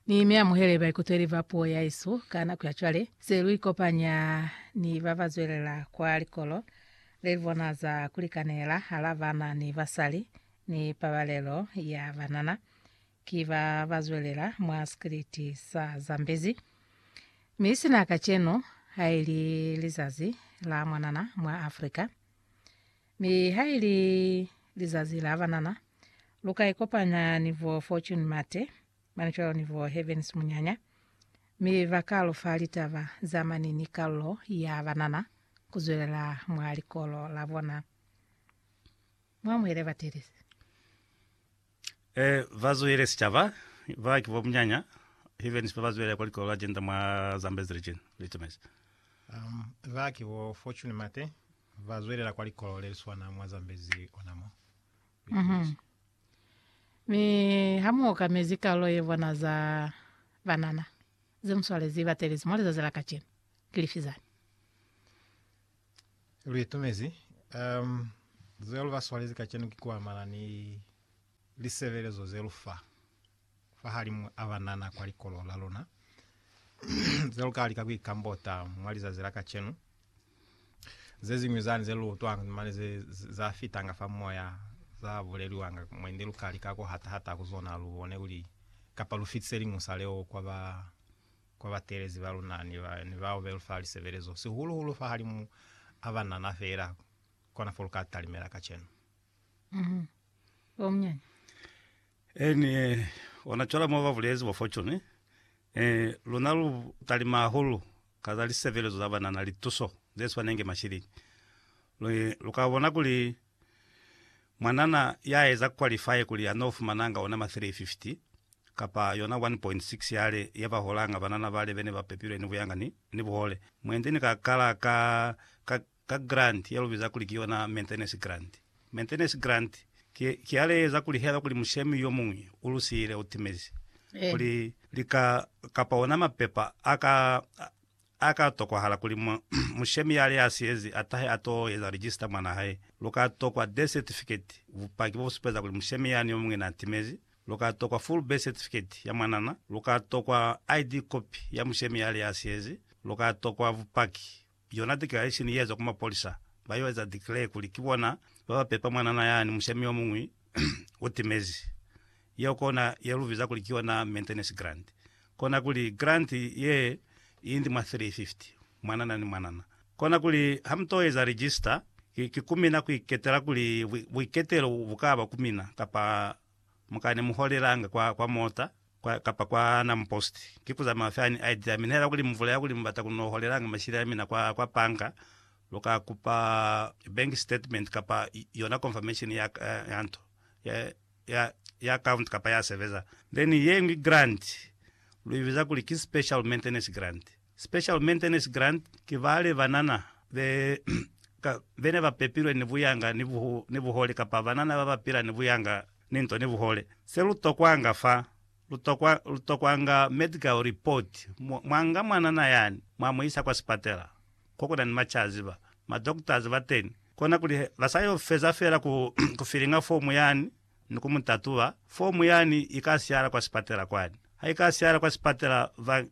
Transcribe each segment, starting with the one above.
Ni mi amuhele baikutweli ba puo ya isu ka nako ya cwale, se lu ikopanya ni ba ba zwelela kwa likolo le li bona za ku likanela hala bana ni basali ni pabalelo ya banana. Ki ba ba zwelela mwa sikiliti sa Zambezi. Mi sina kacenu, haili lizazi la mwanana mwa Africa. Mi ha i li lizazi la banana, lu ka ikopanya ni bo Fortune Mate, mane cwalo ni bo Heavens Munyanya, mi ba ka lu fa litaba za mane ni kalulo ya banana ku zwelela mwa likolo la bona. Mu amuhele batelezi. E ba zuhile sicaba, ba ki bo munyanya, even sipe ba zuhile kwa likolo la Gender mwa Zambezi Region, Litemes. Um, ba ki bo Fortune Mate, ba zwelela kwa likolo le li swana mwa Zambezi ona mo. Litemes. Mi ha mu okamezi kalulo ye bona za banana ze mu swalezi batelezi mwa lizazi la kacenu, ki lifi zani? Lu itumezi. Um, ze lu ba swalezi kacenu ki ku amana ni lisebelezo ze lu fa fahalimu a banana kwa likolo la luna, ze lu ka lika ku ikambota mwa lizazi la kacenu. Ze ziñwi zani ze lu utwanga mane ze, ze, za fitanga fa moya, za buleliwanga mwendi, lu ka lika ku hata-hata ku zona lu bone kuli, kapa lu fitise liñusa leo kwa ba kwa bateelezi ba luna ni bao be lu fa lisebelezo, sihulu-hulu fahalimu a banana feela, kona fo lu ka talimela kacenu. Mhm. Ba munyanya. Eh, ni ona cwale mo ba bulezi bo Fortune, eh, luna lu talima hahulu ka za lisebelezo za banana, lituso ze swanengi mashilingi. Lu, lu ka bona kuli Mwanana ya eza qualify kuli a no fumananga ona ma 350 kapa yona 1.6 yale ya ba holanga banana bale bene ba pepilwe ni buyanga ni ni buhole. Mwendi ni ka kala ka, ka, ka grant ya lu biza kuli ki yona maintenance grant. Maintenance grant ki, ki yale eza kuli haiba kuli mushemi yo muñwi u lu siyile, u timezi, kuli li ka, kapa ona mapepa a ka, A ka tokwahala kuli mushemi yale a siyezi a tahe a t'o eza register mwana hae. Lu ka tokwa death certificate, bupaki bo bu supeza kuli mushemi yani yo muñwi n'a timezi. Lu ka tokwa full birth certificate ya mwanana. Lu ka tokwa ID copy ya mushemi yale a siyezi. Lu ka tokwa bupaki, yona declaration ye ezwa ku mapolisa, ba y'o eza declare kuli ki bona ba ba pepa mwanana yani mushemi yo muñwi. u timezi. Yeo kona ye lu biza kuli ki yona maintenance grant. Kona kuli grant ye i ndi mwa 350 mwanana ni mwanana. Kona kuli ha mu to eza register, ki, ki ku mina ku iketela kuli buiketelo bu ka ba ku mina, kapa mu ka ne mu holelanga kwa, kwa mota, kwa, kapa kwa Nam Post. Ki kuza mafi ani a itila, mi nihela kuli muvula ya kuli mubata kuno holelanga mashile a mina kwa, kwa panga, luka kupa bank statement kapa yona confirmation ya, ya nto, ya, ya, ya account kapa ya sebeza. Then yeñwi grant, lu ibiza kuli ki special maintenance grant. Special Maintenance Grant, ki bale banana be ka bene ba pepilwe ni buyanga ni bu ni buhole kapa banana baba pila ni buyanga ni nto ni buhole. Se lu tokwanga fa, lu tokwa lu tokwanga medical report, mwa mwa nga mwanana yani mwa mu isa kwa sipatela ko kuna ni machazi ba ma doctors bateni, kona kuli he ba sa yo feza fela ku ku filinga fomu yani, ni ku mu tatuba, fomu yani i ka siala kwa sipatela kwani. Ha i ka siala kwa sipatela, ba,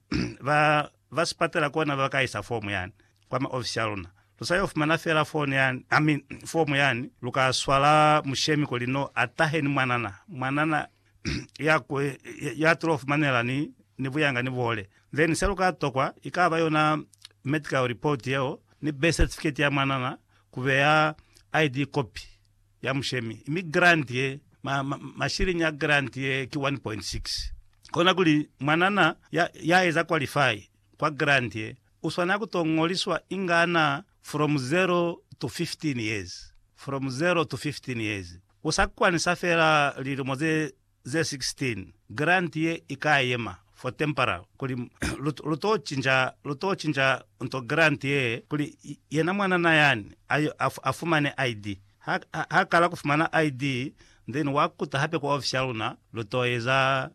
ba, ba sipatela kona ba ka isa fomu yani kwa maofisi a luna. Lu sa yo fumana fela foni yani, I mean, fomu yani, lu ka swala mushemi kuli no a tahe ni mwanana, mwanana ya ku, ya tulo fumanela ni, ni buyanga ni buhole. Then se lu ka tokwa, i ka ba yona medical report yeo, ni birth certificate ya mwanana, ku beya ID copy. ya mushemi, mi grant ye, ma, ma, mashilingi a grant ye ki 1.6. Kona kuli mwanana ya, ya eza qualify kwa grant ye, u swanela ku to ngoliswa inga ana from 0 to 15 years, from 0 to 15 years. U sa kwanisa fela lilimo ze, ze 16, Grant ye i ka yema for temporal kuli lu, lu to cinca, lu to cinca nto grant ye kuli yena mwanana yani a yo a, a fumane ID. Ha, ha kala ku fumana ID, then wa kuta hape ku ofisi ya luna, lu to eza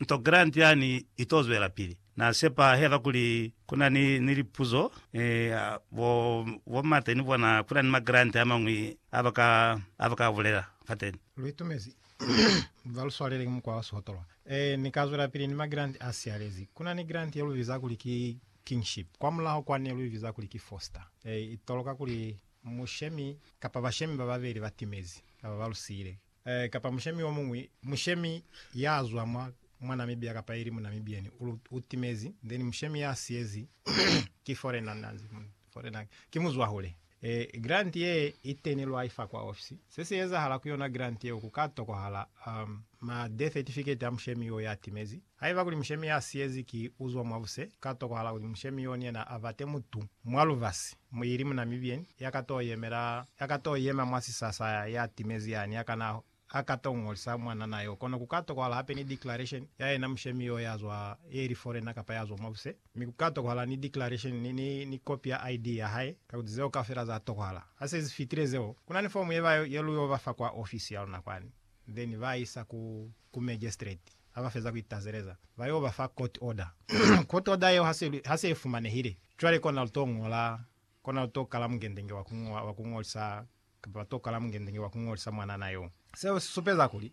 nto grant yani i to zwelapili. Na sepa hela kuli kuna ni, ni lipuzo, ni, a, bo, bo Mate ni bona, kuna ni magrant amañwi a ba ka, a ba ka bulela fateni. Lu itumezi. Ba lu swalele ki mukwa wa sihotolwa. Ee, Ni ka zwelapili ni magrant a siyalezi. Kuna ni grant ye lu biza kuli ki Kingship. Kwamulaho kwa ne lu i biza kuli ki Foster. Ee, i toloka kuli mushemi, kapa bashemi ba babeli ba timezi, kapa ba lu siyile. Ee, kapa mushemi yomuñwi, mushemi ya zwa mwa, mwa Namibia kapa ili mu Namibian, u, u timezi, then mushemi ya siyezi ki foreigner, na nzi, foreigner, ki muzwahule. Ee, grant ye i teni lwa i fa kwa ofisi. Se si ezahala ku yona grant yeo ku ka tokohala, um, ma death certificate a mushemi yo ya timezi, Haiba kuli mushemi ya siyezi ki uzwa mwabuse, ka tokohala kuli mushemi yo ni yena abate mutu mwa lubasi, ili mu Namibian, ya ka to yemela, ya ka to yema mwa sisasa ya timezi yani, ya kana a ka to ngolisa mwanana yo. Kono ku ka tokohala hape ni declaration ya yena mushemi yo ya zwa, ye ili foreigner kapa ya zwa mwabuse, mi ku ka tokohala ni declaration, ni, ni, ni kopi ya ID ya hae, kakuli zeo kaufela za tokohala. Ha se zi fitile zeo, kuna ni fomu ye ba, ye lu yo ba fa kwa ofisi ya luna kwani. then ba isa ku ku magistrate ha ba feza ku itazeleza ba yo ba fa court order court order yeo hase hase ifumanehile cwale kona lu to ngola kona lu to kala mungendenge wa ku wa ku ngolisa kapa ba to kala mungendenge wa ku ngolisa mwanana yo. Seo si supeza kuli